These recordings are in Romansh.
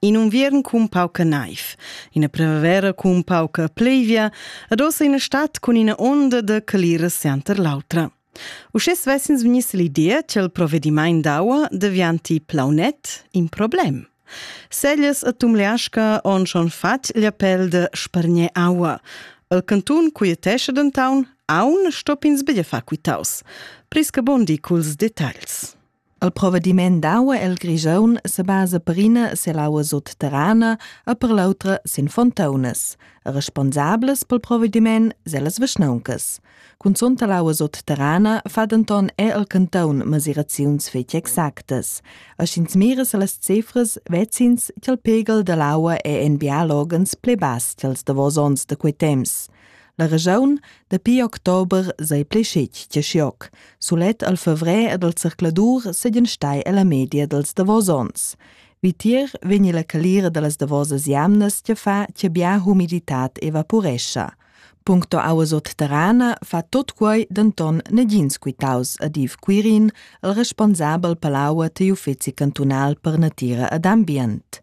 In unviern cun pauca naiv, ina primavera cun pauca plevia ed ossa ina stad cun ina onda da calira sianter l'autra. Uschè svessins vegniss l'idea che il provedimaint d'aua devianti plaunet in problem. Seglias e tumleasca on schon fatg gli appell de spargner aua. Il cantun quietesce dentown aun stopins bella fa quitaus. Prisca Bondi culs detagls. Il provedimaint d'aua el Grischun se basa per ina selaua sutterrana e per l'autra sin fontaunas, e responsables pel provedimaint sun las vischnauncas. Cunzunt l'aua sutterrana fa denton er il canton mesiraziuns fetg exactas. E sch'ins mira se las cifras, vezins ch'el pegel dall'aua è en biologens pli bass ch'els davos ons da quei temps. La regiun dapi october sei pli scetg che schioc. Sulet al fevrer ed al zercladur seigien stai ella media dels davos ons. Vitier vegni la calira dallas davosas jamnas che fa che bia humiditat evaporescha. Puncto auas terrana fa tot quei denton negins quitaus ad Iv Quirin, il responsabel palaua ti uffeci cantunal per natira ed ambient.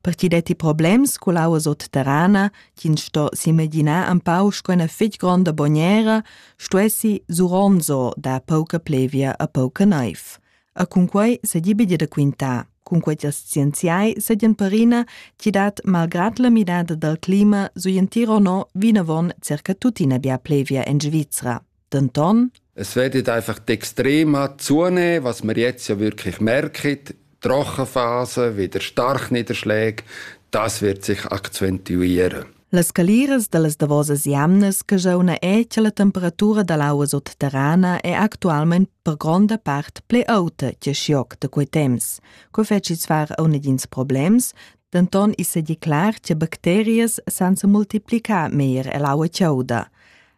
per ti detti problems cu l'aua sotterrana ch'ins sto s'imaginar un pau sco ina fitg gronda bognera stuessi suronzo dar pauca plevia a pauca naiv. E cun quei se di bidi da quintar. Cun quei els scienziai sedien perina ti dat malgrad la midada dal clima su entiro no vinavon circa tuttina bia plevia en Svizzera. Denton es wird einfach die extrema Zunehme, was wir jetzt ja wirklich merken, die Rochenphase, wieder Starkniederschläge, das wird sich akzentuieren. Las caliras da las davosas jamnas che jeu na è che la temperatura da l'aua sotterrana è actualment per gronda part ple auta che schioc da quei temps. Co feci far a negins problems, denton is è declar che bacterias sansa multiplicar meir e l'aua chauda.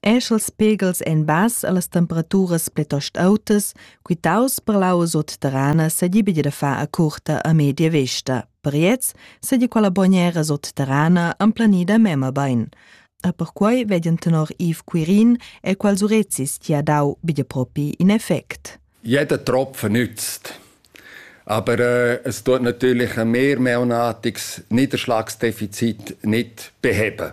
esch els pegels en bass allas temperaturas pletost autas, quitaus per l'aua sotterrana s'agibi da far a curta a media vesta. Per gliez sedi quella bognera sotterrana emplanida mema bain. A perquai vedian tenor Yves Quirin e quals urezis ti ha dau bia propi in effect. Jeder Tropfen nützt. Aber äh, es tut natürlich ein mehrmonatiges Niederschlagsdefizit nicht beheben.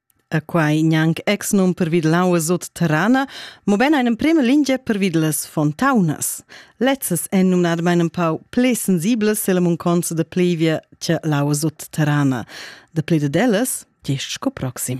E quai gnanc exnum pervid l'aua sutterrana, mobein ein emprema lingia pervid las fontaunas. Lezzas èn numnadamain in pau pli sensiblas silla munconza da plevia che l'aua sutterrana. Da pli dad ellas, gest sco proxim.